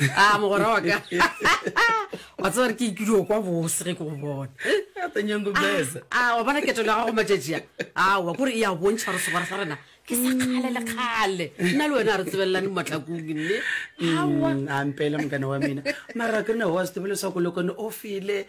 a ah, mogora wa ka wa tseba re ke ikudio kwa bose ge ke go bona a ah, wa bona ketelo ya gago matšatši a awa kore e ya bontšha gore segwara sa rena ke sa kgale le kgale nna le wena a re tsebelelane mo matlakong mme mm, ampele mokane wa mena mara ke rena wa setebele sa kolokone o fele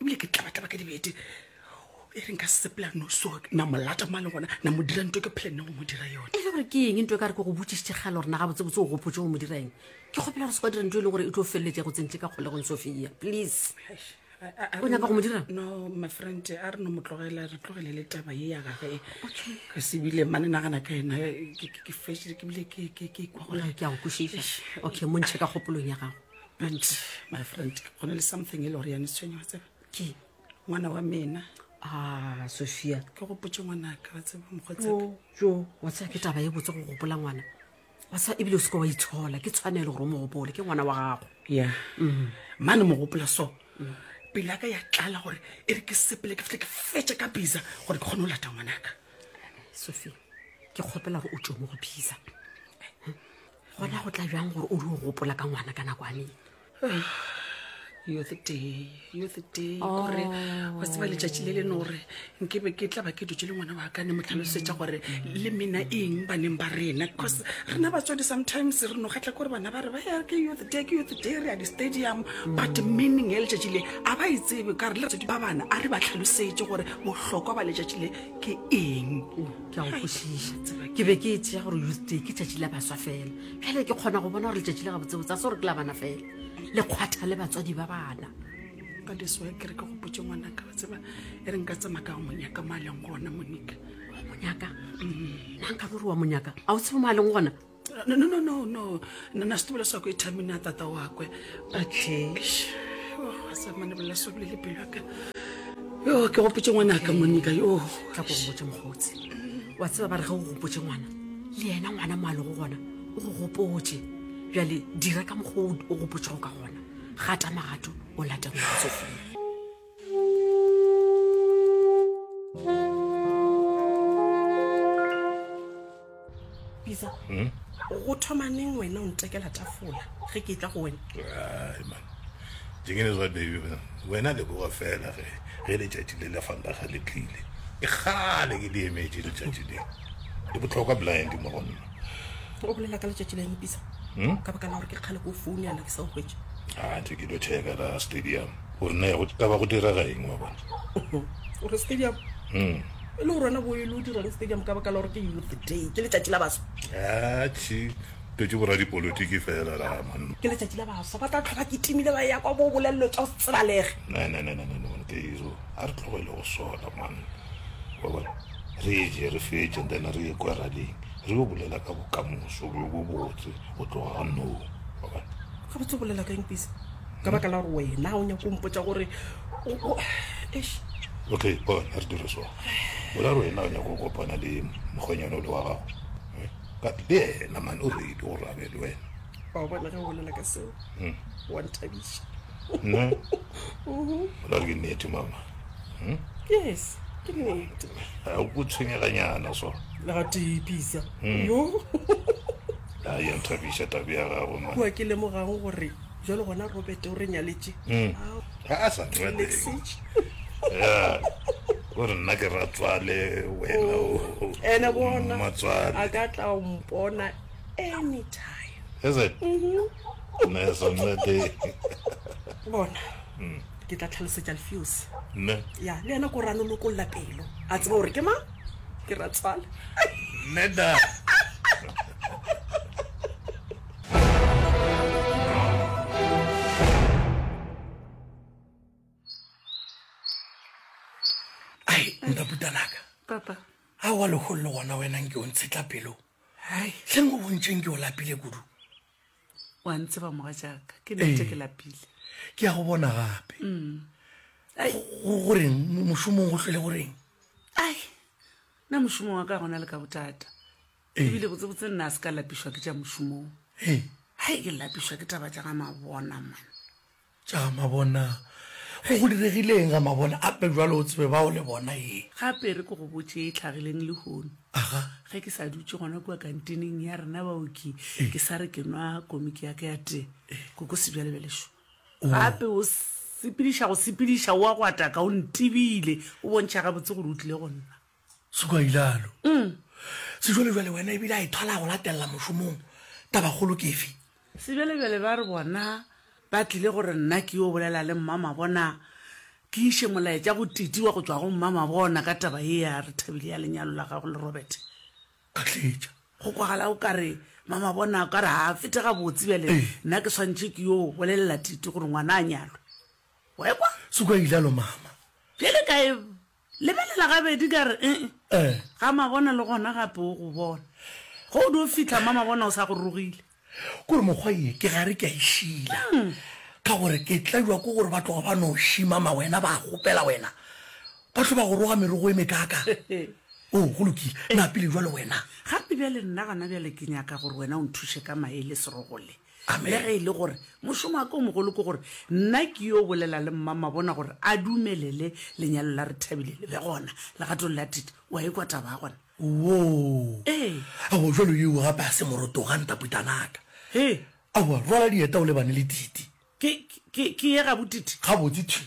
ebile ke tlabatlaba ka dibete e reng ka sepela noso na molata mo a leng gona na mo dira nto ke phele nne go mo dira yone e le gore ke eng nto e ka re ke go botsišitše kgale gore na ga botsebotse o gopotse go mo dira eng ke kgopela gore se kwa dira nto e leng gore e tlo feleletse go tsentse ka kgolegong sofia please o nyaka go mo dira no my friend a re no mo tlogela re tlogele le taba ye ya gage ka sebile mane nagana ka ena ke fešile ke bile ke kwa gore ke a go kwešiša okay mo ntšhe ka kgopolong ya gago and my friend go na le something e le gore yane tshwenye wa tseba ke ngwana wa mena a sophia ke gopotse ngwanaka wa tseba mokgotsaka jo wa tseba ke taba e botse go gopola ngwana wa tseba ebile o seke wa itshola ke tshwanelo gore o mo gopole ke ngwana wa gago ya mm. mane mo gopola so mm. pele ya ka ya tlala gore e re ke sepele ke fitlhe ke fetse ka bisa gore ke kgone go lata ngwanaka sophia ke kgopela gore o tso mo go bisa gona go tla bjang gore o di o gopola ka ngwana ka nako aneng kore wa tseba letšatši le le no gore nke be ke tla ba ke dutse le ngwana wa ka ne mo tlhalosetša gore le mena eng baneng ba rena because rena batswadi sometimes re no kgatlha kore bana ba re ba ya ke youth day ke youth day re ya di-stadium but meaning ya letšatši le a ba e tsebe ka re le batswadi ba bana a re ba tlhalosetše gore bohlokwa ba letšatši le ke eng ke a go kwešiša ke be ke e tšea gore youth day ke tšatši la baswa fela bjale ke kgona go bona gore letšatši la gabotsebotse a se gore ke la bana fela le kgwatha le batswadi ba bana ka diswa ke re ke gopotse ngwana ka tseba e re nka tsema ka go monyaka mo a leng gona monika monyaka mm. na nka gore wa monyaka a o tsebo mo a leng gona no no no no no nna setubelo sa ko ithamine a tata wakwe atlish a sa mane bolela so bile le pelo yaka yo ke gopotse ngwana ka monika yo tla ko gopotse mokgotsi wa tseba ba re ga o gopotse ngwana le yena ngwana mo a lego gona o go gopotse bjale dira ka mokgwa o gopotsego ka gona gata magato o late go tsofela bisa hmm? go thoma neng wena o ntekela tafola ge ke tla go wena dingene zwa baby wena le boga fela ge ge letšatši le le fantaga le tlile ke gale ke di emetše letšatši le le botlhokwa blind mo go nna o bolela ka letšatši le mpisa hmm? ka baka la gore ke kgale ko foune yana ke sa o hwetše a ntse ke lo checka la stadium gore na go ka ba go direga eng wa bona gore stadium mm. e le gore wena bo e le o dirang stadium ka baka la gore ke youth day ke letšatši la baswa atšhi totse boradipolotiki fela raman ke letšatši la baswa ba tla tlhoba ke timile ba ya kwa bo bolelelo tša go se tsebalege nanananananteiro a re tlogele go sola man wa bona re je re fetše then re ye kwa rading re yo bolela ka bokamoso bo bo botse go tloga ga noo wa bona ga botse bolela ka eng pisa ka baka la gore wena o nyako mpotsa gore okay bon a re dire so ola re wena o nyako kopana le mokgwenyana o le wa gago eh? but le ena mane o reile gore a be le wena wa bona ge o bolela ka seo hmm. wa nthabiša nna mhm. ola re ke nnete mama hmm? yes ke nnete ga o ko tshwenyeganyana so legatepisa hmm. yo a ya nthabiša tabe ya gago ma kua ke lemogang gore jalo gona robert o re nyaletše Ao, ga a sa nna teng Alexis. ya o re nna ke ratswale wena o- ene bona a mmatswale ka tla o mpona anytime is it nna ya sa nna teng bona ke tla tlhalosetša lefeose nne ya le yena ko rano lokolla pelo a tseba gore ke mang ke ratswale nne da wa legolo le gona wenang ke o ntshetla pelo tleng o bontšeng ke o lapile kudu wa ntseba moga jaaka ke nete ke lapile ke ya go bona gape mm. goreng mošomong go tlhole goreng ai nna mošomong wa ka gona le ka botata Ee. Ebile botsebotse nna a se ka lapišwa ke tša mošomong. Ee. Hai ke lapišwa ke taba tša ga mabona man. Tša mabona. Go go diregileng ga mabona ape jwalo o tsebe ba o le bona ee. Gape re ko go botše e tlhagileng lehono. Aha. Ge ke sa dutše gona kua kantineng ya rena baoki ee. ke sa re ke nwa komiki ya ka ya tee ee. koko sebjalebelešo oh. gape o sepediša go sepediša o a go ataka o ntebile o bontšha gabotse gore o tlile go nna. sekwailalo mm. sejwalejwale wena ebile a ithola e go latelela mošomong tabakgolo kefe sebjalejwale ba re bona ba tlile gore nna ke yo bolela le mmama bona ke iše molaetša go titi wa go tswa go mmama bona ka taba ye ya re thabile ya lenyalo la gago le robert ka tletša go kwagala o ka re mama bona o ka re ga fete ga botse bjale nna ke swantšhe ke yo bolelela titi gore ngwana a nyalwe wa ekwa sekwa ilalo mama bjale kae Lebelela gabedi ka re e-e. Ga Mabona le gona gape o go bona. Ge o dio fihla mma Mabona o sa go rogile. Ke gore mokgwa ye ke gare ke a e šila. Ka gore ke tlajwa ke gore ba tloga ba no šima ma wena ba kgopela wena. Ba tlo ba go roga merogo e mekaka. Oh, go lokile. Na pele jwale wena. Gape bjale nna gona bjale ke nyaka gore wena o nthuše ka mae le serogo le. Le ge e le gore mošomo wa ka o mogolo ke gore nna ke yo bolela le mmamabona gore a dumelele lenyalo la re Thabile le be gona legatong la Tite, o a ikwa taba ya gona? Woo! Ee. Aowa, jwalo yeo gape ga se moroto ga ntaputanaka. Hee! Aowa, rwala dieta o lebane le Tite. Ke, ke, ke ye gabo Tite? Gabotse thwi.